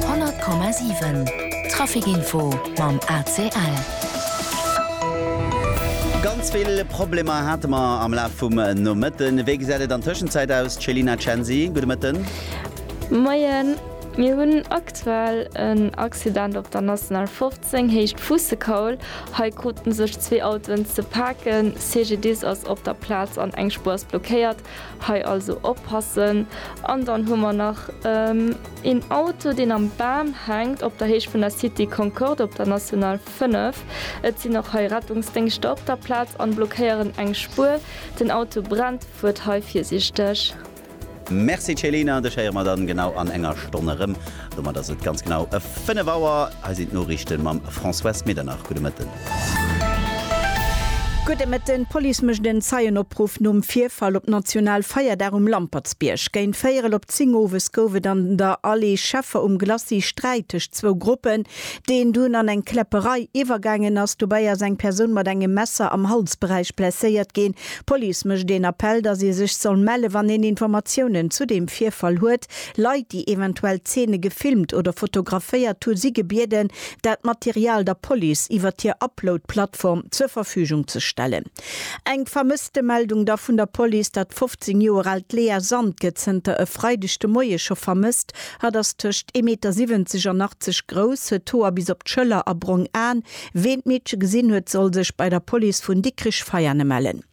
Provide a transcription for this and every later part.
100,7 Trafic info mam ACL. Ganz vill Problemer hate mer am Laf vum Nomëtten. Wéi gesäit et an Tëschenzäit aus, d'Chelina Chanzy? Gudde Mëtten. Moien. Mir hunn aktuell en Accident op der National 15, Héicht Fuussekaul. Hei krute sech zwee Autoen ze paken. CGDIS ass op der Plaz an eng Spuer ass blockéiert. Hei also oppassen. An dann hu mer nach een Auto, deen am Bam hänkt op der Héicht vun der Cité Concorde op der National 5. Et sinn och hei Rettungsdéngschter op der Plaz an blockéieren eng Spuer. Den Auto brennt. Fuert hei virsiichteg. Merci Céline, dech héiere mer dann genau an enger Stonn erëm. Domat ass et ganz genau 5 Auer. Hei sinn d'Noriichten mam Françoise Medernach. Gudde Mëtten. Gudde Mëtten. D'Police mécht en Zeienopruff nom Virfall op National Feierdag um Lampertsbierg. Géint véierel op 10 owes gouf et an der Allée Scheffer um Glacis Sträit tëscht zwou Gruppen, deen dunn an eng Kläpperei iwwergaangen ass. Dobäi ass eng Persoun mat engem Messer am Halsberäich blesséiert ginn. D'Police mécht een Appell, dass ee sech soll mellen, wann een Informatiounen zu deem Virfall huet. Leit, déi eventuell d'Zeene gefilmt oder fotograféiert hu si gebieden, dat Material der Police iwwert hir Upload-Plattform zur Verfügung ze stellen. Eng Vermësstemeldung da vun der Police, Dat 15 Joer aalt Léa Sand gëtt zënter e Freideg de Moie scho vermësst. Hatt ass tëscht ee Meter 70 an 80 grouss, huet d'Hoer bis op d'Schëller a brong Aen. Ween d'Meedche gesinn huet, soll sech bei der Police vun Dikrich-Veiane mellen.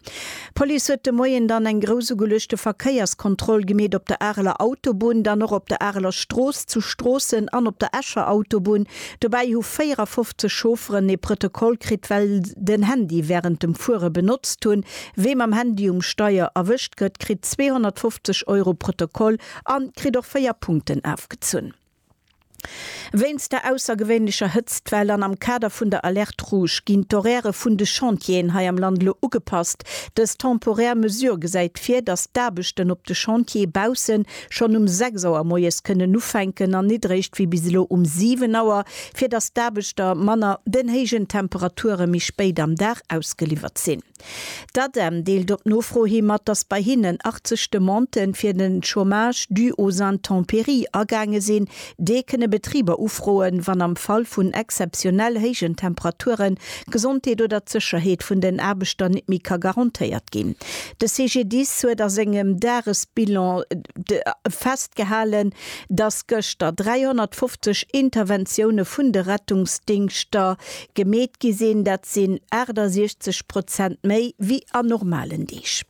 D'Police huet de Moien dann eng groussugeulegte Verkéierskontroll gemeet op der Areler Autobunn, dann och op der Areler Strooss, zu Stroossen an op der Escher Autobunn. Dobäi hu 54 Chaufferen ee Protokoll kritt, well den Handy wärend dem Fuere benotzt hunn. Wee mam Handy um Steier erwëscht gëtt, kritt 250 Euro Protokoll an kritt och 4 Punkten afgezunn. Wéinst der aussergewéinlecher Hëtztwell an am Kader vun der Alerte Rouge ginn d'Horairë vun de Chantieren hei am Land elo ugepasst. Dës temporär Mesure gesäit vir, datt d'Aarbechten op de Chantiere bausse schonn um 6 Auer moies kënnen ufänken an nit eréischt wéi bis elo um 7 Auer, fir datt d'Aarbechter manner den héijen Temperature méi spéit am Dag ausgeliwwert sinn. D'ADEM deelt op Nofro hi mat, datt bei hinnen 80 Demandë fir de Chômage dû aux intempéries agaange sinn. Déi kënne Betriber ufroen, wann am Fall vun exzeptionell héijen Temperaturen d'Gesondheet oder d'Sécherheet vun den Aarbechter net méi ka garantéiert ginn. De CGDIS huet a sengem Dagesbilan festgehalen, datt gëschter 350 Interventioune vun de Rettungsdingschter Gemeet gi sinn, dat sinn 68 Prozent méi wéi an normalen Deeg.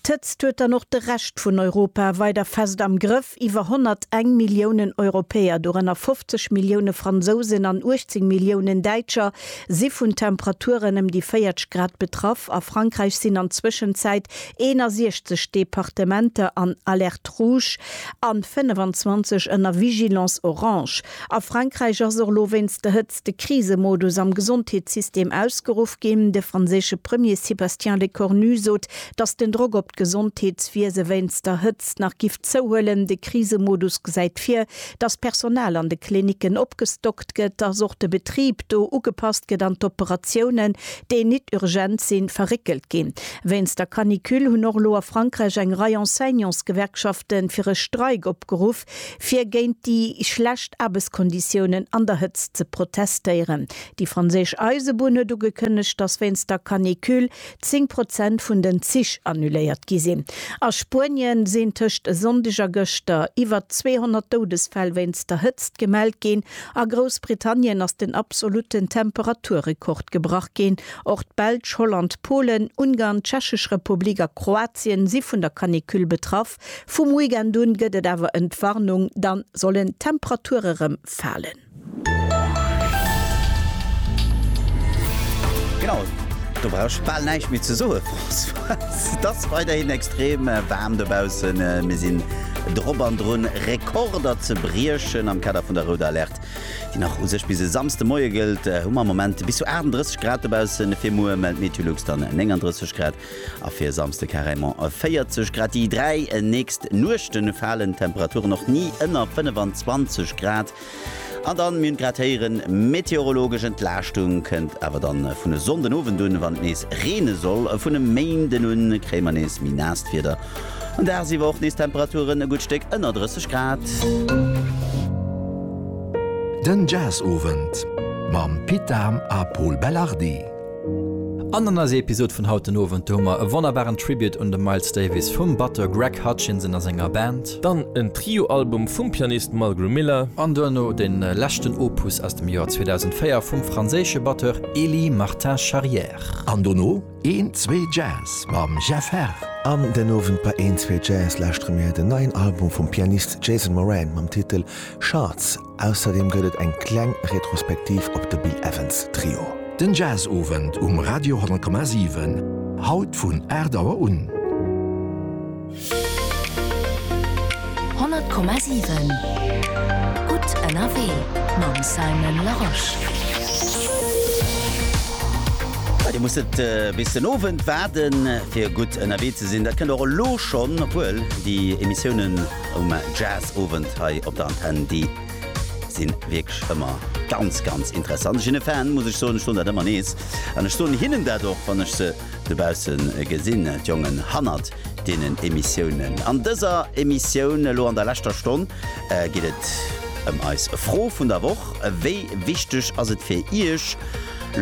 D'Hëtzt huet dann och de Rescht vun Europa weider fest am Grëff. Iwwer 101 Milliounen Europäer, dorënner 50 Millioune Fransousen an 18 Milliounen Däitscher, si vun Temperaturen ëm déi 40 Grad betraff. A Frankräich sinn an Zwëschenzäit 61 Departementer an Alerte rouge an 25 ënner Vigilance orange. A Frankräich ass och elo wéinst der Hëtzt ass de Krisemodus am Gesondheetssystem ausgeruff ginn. De franséische Premier Sébastien Lecornu sot, datt den Drock op d'Gesondheetswiese wéinst der Hëtzt nach giff zouhuelen. De Krisemodus gesäit vir, datt d'Personal an de Klinicken opgestockt gëtt, datt och de Betrib do ugepasst gëtt an d'Operatiounen, déi nit urgent sinn, verréckelt ginn. Wéinst der Canicule hunn och elo a Frankräich eng Rei Enseignantsgewerkschafte fir e Streik opgeruff. Fir géint déi schlecht Aarbechtskonditiounen an der Hëtzt ze protestéieren. Déi franséisch Eisebunn huet ugekënnegt, dass wéinst der Canicule 10 Prozent vun den Zich annuléiert gi sinn. A Spuenie sinn tëscht e Sonndeg a gëschter iwwer 200 Doudesfäll wéinst der Hëtzt gemellt ginn. A Groussbritannien ass den absolutten Temperaturrekord gebrach ginn. Och d'Belsch, Holland, Polen, Ungarn, d'Tschechesch Republik a Kroatien si vun der Canicule betraff. Vum Weekend un gëtt et awer Entwarnung, dann sollen d'Temperature rem falen. Genau, do brauch ech bal näischt méi ze soe Françoise. Et ass weiderhin extrem waarm dobaussen. Mir sinn drop an drun, Rekorder ze briechen. Am Kader vun der Rouder Alerte, déi nach u sech bis e Samsde Moie gëllt, hu mer am Moment bis zu 38 Grad dobaussen. Fir muer mellt Meteolux dann 39 Grad. A fir e Samsde carrément 40 Grad. Déi dräi nächst Nuechte falen d'Temperaturen och ni ënner 25 Grad. An dann, mir hunn et grad héieren, meteorologesch Entlaaschtung kënnt awer dann vun e Sonndenowend un, wann et nees reene soll. Vun e Méinden un kréie mer nees méi naasst Wieder an dagsiwwer och nees Temperaturen e gutt Stéck ënner 30 Grad. Den Jazzowend mam Pit Dahm a Pol Belardi. An an eiser Episod vun haut den Owend, do hu mer e wonnerbaren Tribute un de Miles Davis vum Batteur Greg Hutchinson a senger Band. Dann en Trio-Album vum Pianist Mulgrew Miller. An duerno de leschten Opus aus dem Joer 2004 vum franséische Batteur Elie Martin Charrière. An dono een zwee Jazz mam Jeff Herr. An den Owend bei een zwee Jazz lauschtere mir den neien Album vum Pianist Jason Moran mam Titel Shards. Ausserdeem gëtt et eng kleng Retrospektiv op de Bill Evans Trio. Den Jazzowend um Radio 10,7, haut vun 8 Auer un. 100,7 gutt ënnerwee mam Simon Larosche. Bei dir muss et bis den Owend waarden fir gutt ënnerwee ze sinn. Dat kënnt och elo schonn, obwuel déi Emissiounen um Jazzowend hei op der Antenn. Déi si wierklech ëmmer ganz, ganz interessant. Ech sinn e Fan, muss ech soen, ech soen dat ëmmer nees an ech soen hinnen dat och, wann ech se dobausse gesinn, d'Jongen hannert deenen Emissiounen. An dëser Emissioun elo an der leschter Stonn geet et ëm eis Fro vun der Woch, Wéi wichteg ass et fir Iech,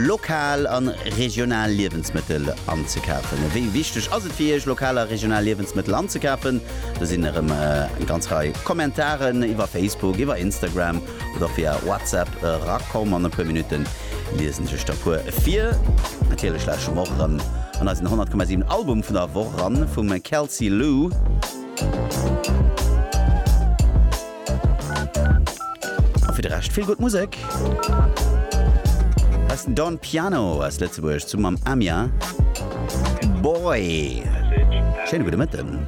lokal a regional Liewensmëttel anzekafen? Wéi wichteg ass et fir Iech, lokal a regional Liewensmëttel anzekafen? Do sinn erëm eng ganz Rei Kommentaren iwwer Facebook, iwwer Instagram oder via WhatsApp erakomm. An e puer Minutten liesen ech lech der puer vir. Natierlech lauschteren mer och erëm an eisen 100,7 Album vun der Woch eran vum Kelsey Lou. A fir de Rescht vill gutt Musek. Hei ass den Don Piano aus Lëtzebuerg zu mam Amia. Boy! Schéine gudde Mëtten.